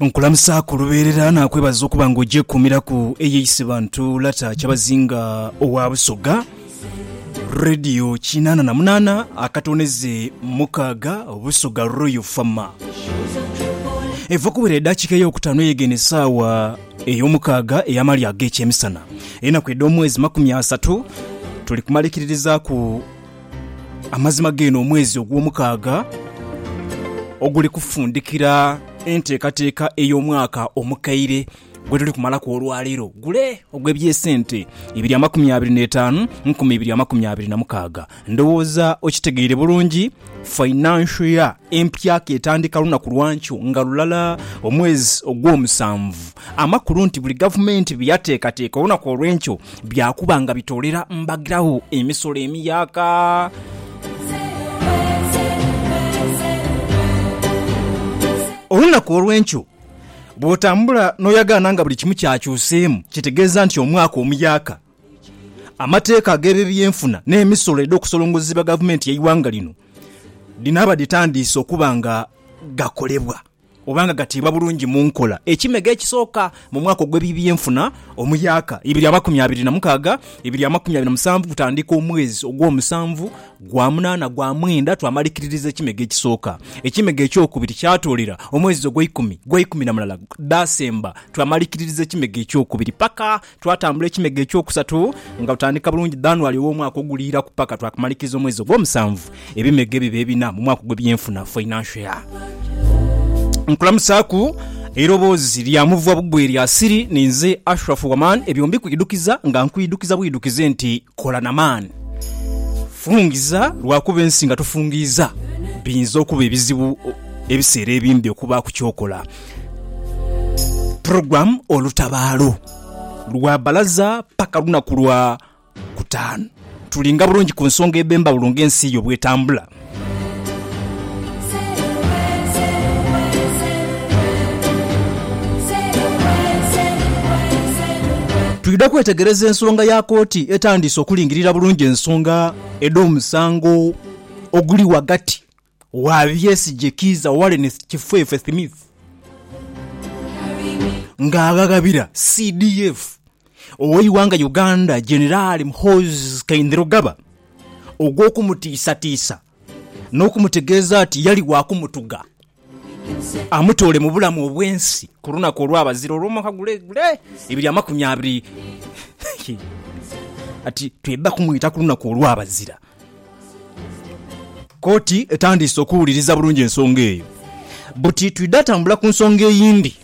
Nkulamusa ku lubeerera naakwebaza okuba nga ogyekuumiraku eyeise bantu Lata Kyabazinga owa Busoga Radio kinaana na munaana akatoneze mukaaga Busoga Royal Fama eva kubwira eddakiika ey'okutaano eyegenda essaawa ey'omukaaga ey'amali ag'ekyemisana enaku edh'omwezi makumi asatu tuli kumalekiririzaaku Amazima g'eno omwezi ogw'omukaaga oguli kufundikira enteekateeka ey'omwaka omukaire gwe tuli kumalaku olwaleero gule ogw'eby'esente ibiri amakumi abiri n'etaanu nkumi ibiri amakumi abiri na mukaaga. Ndowooza okitegeire bulungi, financial year empya k'etandika lunaku lwankyo nga lulala omwezi ogw'omusanvu amakulu nti buli gavumenti bye yateekateeka olunaku olw'enkyo bya kuba nga bitoolera mbagirawo emisolo emiyaaka. Olunaku olw'enkyo bw'otambula n'oyagaana nga buli kimu kyakyuseemu kitegeeza nti omwaka omuyaaka. Amateeka ag'ebebyenfuna n'emisolo edh'okusolongozebwa gavumenti y'eighanga lino dhinaaba dhitandiise okuba nga gakolebwa. oba nga gatiibwa bulungi mu nkola ekimego ekisooka mu mwaka ogw'eby'ebyenfuna omuyaka ibiri amakumi abiri na mukaaga ibiri amakumi abiri na musanvu kutandika omwezi ogw'omusanvu gwa munaana gwa mwenda twamalikiririza ekimego ekisooka ekimego ekyokubiri kyatoolera omwezi ogw'eikumi gwa ikumi na mulala dasemba twamalikiririza ekimego ekyokubiri paka Twatambula ekimego eky'okusatu nga tutandika bulungi Dhanuali ow'omwaka oguliiraku paka twakamaliriza omwezi ogw'omusanvu ebimego ebiba ebina mu mwaka ogw'ebyenfuna, financial year. Nkulamutsaku eiroboozi lya muvwa bugwe erya Siri ni nze Ashraf Waman ebyo mbikuidhukiza nga nkuidhukiza bwidhukize nti kola na maani. Fungiza lwakuba ensi nga tofungiiza biyinza okuba ebizibu ebiseera ebimbi okubaaku ky'okola. Program olutabaalo lwa balaza paka lunaku lwa kutaanu tulinga bulungi ku nsonga edhembawulo nga ensi yo bwetambula. Twidha kwetegereza ensonga ya kooti etandiise okulingirira bulungi ensonga edhomusango oguli ghagati. Waabyesigye Kiiza Wallace Kifefe Smith ng'aghaghabira CDF ow'eighanga Uganda Jenerali Muhoozi Kainerugaba ogw'okumutiisatiisa n'okumutegeeza nti yali waakumutuga amutoole mu bulamu obw'ensi ku lunaku olwabazira olw'omwaka gule gule ebiri amakumi abiri. Kati twidha kumwita ku lunaku olwabazira. Kooti etandiise okuwuliriza bulungi ensonga eyo buti twidha tambula ku nsonga eyindi.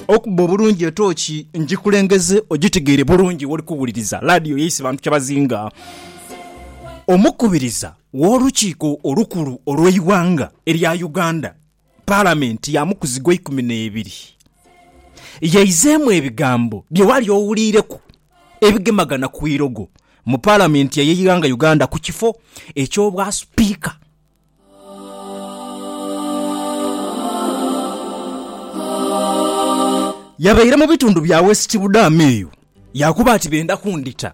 Okubba obulungi etooki ngikulengeze ogitegeere bulungi woli kuwuliriza laadiyo yaise bantu kyabazinga. Omukubiriza w'olukiiko olukulu olw'eighanga erya Uganda, Palamenti ya mukuzi gwa ikumi n'ebiri yaizeemu ebigambo bye wali owuliireku ebigemagana ku irogo mu Palamenti ey'eighanga Uganda ku kifo eky'obwa Sipiika. Yabaire mu bitundu bya West Budaama eyo yaakuba ati benda kundhita.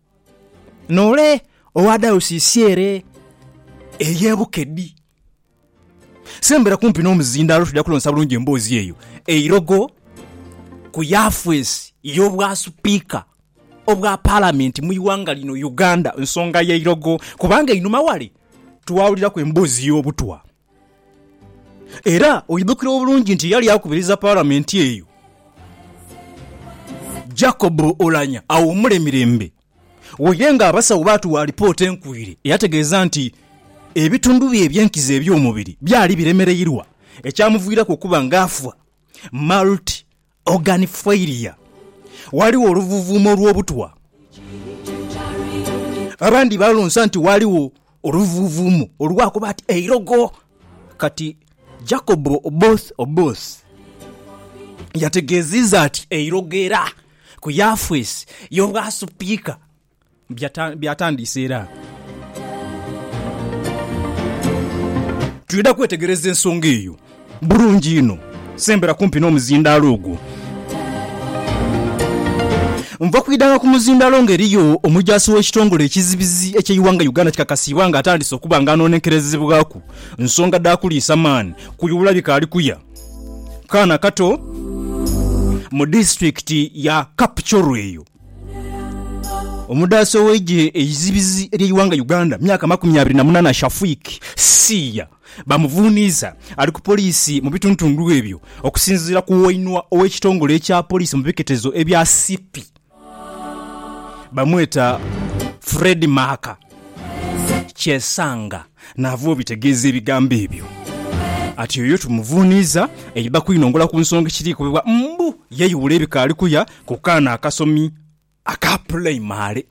N'ole owa dayosiisi ere ey'e Bukedi. Sembera kumpi n'omuzindaalo twidha kulonsa bulungi emboozi eyo eirogo ku yafeesi y'Obwasupiika obwa Palamenti mu ighanga lino Uganda. Nsonga ya irogo kubanga einhuma wale twawuliraku emboozi y'obutwa. Era oidhukira obulungi nti yali akubiriza Palamenti eyo Jacob Oulanyah awumule mirembe. Waire nga abasawo baatuwa alipoota enkuire eyategeeza nti ebitundu bye eby'enkizo eby'omubiri byali biremereirwa ekyamuviiraku okuba nga afa multi Organ failure, Ghaligho oluvuvuumo lw'obutwa. Abandi balonsa nti ghaligho oluvuvuumo olwakuba ati eirogo. Kati Jacob Oboth Oboth yategeziiza ati eirogo era ku yafeesi y'obwa Sipiika, Byatandiise era twidha kwetegereza ensonga eyo bulungi inho. Sembera kumpi n'omuzindaalo ogwo. Nva kwidhanga ku muzindaalo nga eriyo omujaasi w'ekitongole ekizibizi eky'eighanga Uganda kikakasiibwa nga atandise okuba nga anoonenkerezebwaku nsonga dha kuliisa maani kuyuula bikaali kuya kaana kato mu disitulikiti ya Kapchorwa eyo. Omudaasi ow'eigye eizibizi ery'eighanga Uganda myaka makumi abiri na munana Shafiq Siya bamuvuniiza ali ku poliisi mu bituntundu ebyo okusinziira ku wainwa ow'ekitongole ekya poliisi mu biketezo ebya Sipi bamweta Fred Maaka Kyesanga. Naava obitegeeza ebigambo ebyo ati, Oyo tumuvuuniiza eiba kwinongola ku nsonga ekiriikubibwa mbu yeyuwula ebikaali kuya ku kaana akasomi aka pulayimale.